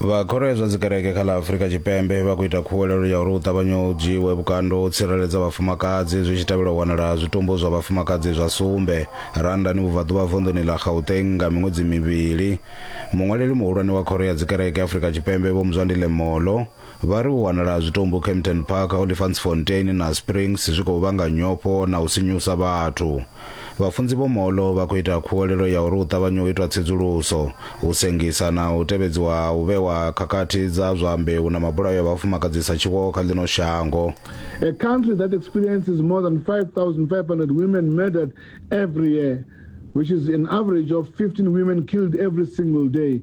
vha khoro ya zwa dzikereke kha ḽa afurika tshipembe vha khou ita khuwelelo ya uri hu ṱavhanye u dzhiiwe vhukando ho tsireledza vhafumakadzi zwi tshi tevhela u wanala zwitumbu zwa vhafumakadzi zwa sumbe randani vhubvaḓuvha vunḓuni ḽa gauteng nga miṅwedzi mivhili muṅwaleli muhulwane wa khoro ya dzikereke afurika tshipembe vho muzwandile molo vha ri u wanala ha zwitumbu Kempton Park, Olifantsfontein na Springs zwi khou vhanga nyofho na u sinyusa vhathu. Vhafunzi vho Molo vha khou ita khuwelelo ya uri hu ṱavhanye u itwa tsedzuluso, u sengisa na u tevhedziwa ha u vhewa khakhathi dza zwa mbeu na mabulayo a vhafumakadzi sa tshiwo kha ḽino shango. A country that experiences more than 5,500 women murdered every year, which is an average of 15 women killed every single day,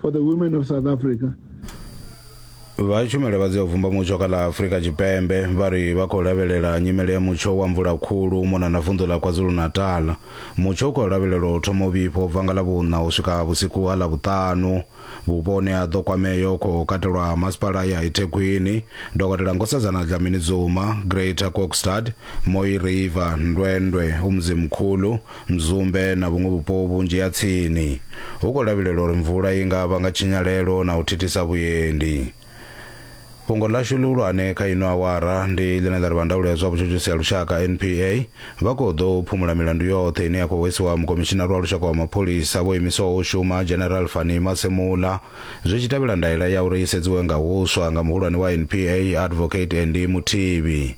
for the women of south africa vha tshumelo vha dzi u vumba mutsho kha ḽa afurika tshipembe vha ri vha khou lavhelela nyimele ya mutsho wa mvula khulu u mona na vunḓu ḽa kwazulu-natal mutsho u khou lavhelelwa u thoma u vhifha u bva nga ḽa vhuṋa u swika vhusiku ha ḽa vhuṱanu vhupo hune ha ḓo kwamea u khou katelwa masipala ya ithekhwini dokotela nkosazana dlamini dzuma greater kokstad moi river ndwendwe umzimkhulu Mzumbe na vhuṅwe vhupo vhunzhi ha tsini, hu khou lavhelelwa uri mvula i nga vhanga tshinyalelo na u thithisa vhuendi. Fhungo ḽashu ḽihulwane kha ino awara ndi ḽine ḽa ri vha ndaulo ya zwa vhutshutshisi ha lushaka, NPA, vha khou ḓo phumula milandu yoṱhe ine ya khou hwesiwa Mukomishinari wa Lushaka wa Mapholisa vho imiswaho u shuma, General Fannie Masemola, zwi tshi tevhela ndaela ya uri i sedziwe nga huswa nga muhulwane wa NPA, Advocate Andy Mothibi.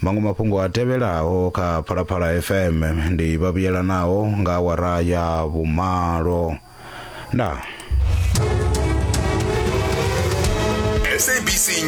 Maṅwe mafhungo a tevhelaho kha Phalaphala FM ndi vha vhuyelanaho nga awara ya vhumalo. Ndaa.